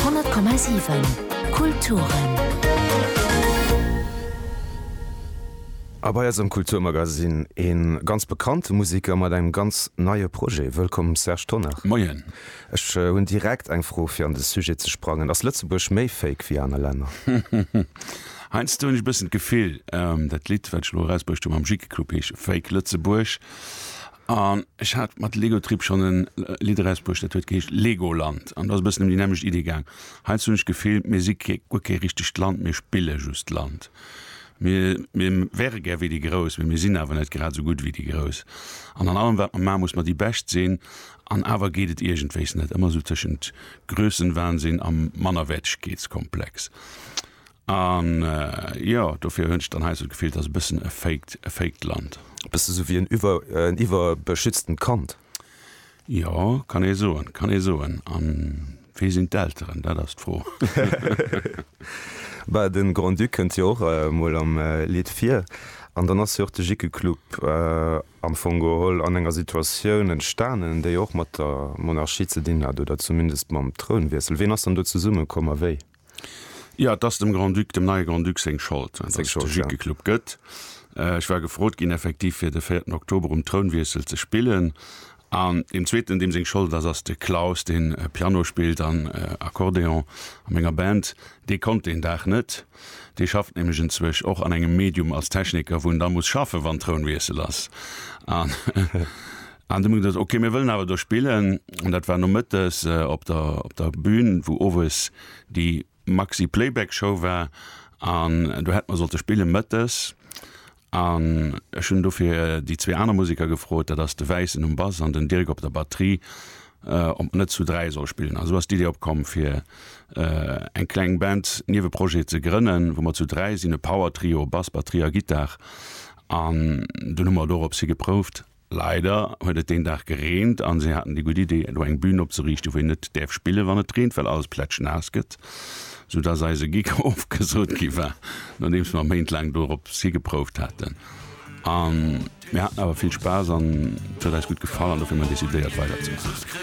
100,7 Kulturen. A bei eis am Kulturmagasinn ee ganz bekannte Museker mat engem ganz neie Projet. Wëllkomm Serge Tonnar. Moien. Ech hunn direkt eng Fro fir an de Sujet ze sprangen, ass Lëtzebuerg méi fake wéi aner Länner? Heiansdo hunn ech e bëssen d'Gefill, dat Lidd wat ech elo erausbruecht hu mam Jickeclub heescht Fake Lëtzebuerg. An ech hat mat Legotrip schonn e Lidd erausbruecht, dat huet geheescht Legoland. An dat ass e bëssen ëm déi nämmlecht Iddi gaang. Heiansdo hunn ech d'Gefill, mir si kee, guer kee richtegt Land, mir spille just Land. Mir, mir wäre gär wéi déi Grouss, mee mir sinn awer net grad esou gutt wéi déi Grouss. An an allem, wat mer maachen, muss mer déi Bescht sinn. An awer geet et iergendwéis net. Ëmmer esou tëschent Grössenwahnsinn a Mannerwäertegkeetskomplex. A jo, dofir hunn ech dann hei esou d'Gefill, et ass e bëssen e faked, e faked Land. E bësse sou wéi en iwwer, en iwwerbeschütztent Kand. Jo, kann ee soen, kann ee soen. A wee sinn d'Elteren? Dat ass d'Fro. Bah, de Grand-Duc kënnt jo och emol am Lidd vir. An dann ass jo och de Jickeclub am Fong geholl an enger Situatioun entstanen, déi och mat der Monarchie ze dinn hat oder zumindest mam Trounwiessel. Wien ass dann do zesummekomm a wéi? Jo, et ass dem Grand-Duc, dem neie Grand-Duc seng Schold, datt et de Jickeclub gëtt. Ech war gefrot ginn, effektiv fir de véierten Oktober um Trounwiessel ze spillen. An deem zweeten, deem seng Schold et ass, ass de Klaus, deen Piano spillt an Accordéon a menger Band. Dee konnt deen Dag net, dee schafft nämlech enzwech och an engem Medium als Techniker, wou en da muss schaffen, wann Trounwiessel ass. An An du gesagt, ok mir wëllen awer do spillen an dat war nomëttes op der op der Bühn wou owes déi Maxi Playback Show war an do hätt mer sollte spille mëttes an ech hunn dofir déi zwee aner Museker gefrot, dat ass de Wäissen um Bass an den Dirk op der Batterie, ob mer net zu dräi solle spillen. An esou ass d'Idee opkomm fir eng kleng Band, Nieweprojet, ze grënnen wou mer zu dräi sinn, e Power Trio, Bass, Batterie a Gittar an dunn hu mer doropshi geprouft. Leider huet et deen Dag gereent an se haten déi gutt Idee elo eng Bühn opzeriichten wou een net däerf spillen wann et reent well alles plätschnaass gëtt, sou dass eise Gig ofgesot gi war nodeems mer méintlaang dorop higeprouft haten. An mir haten awer vill Spaass an et huet eis gutt gefall an dofir hu mer decidéiert weider ze maachen.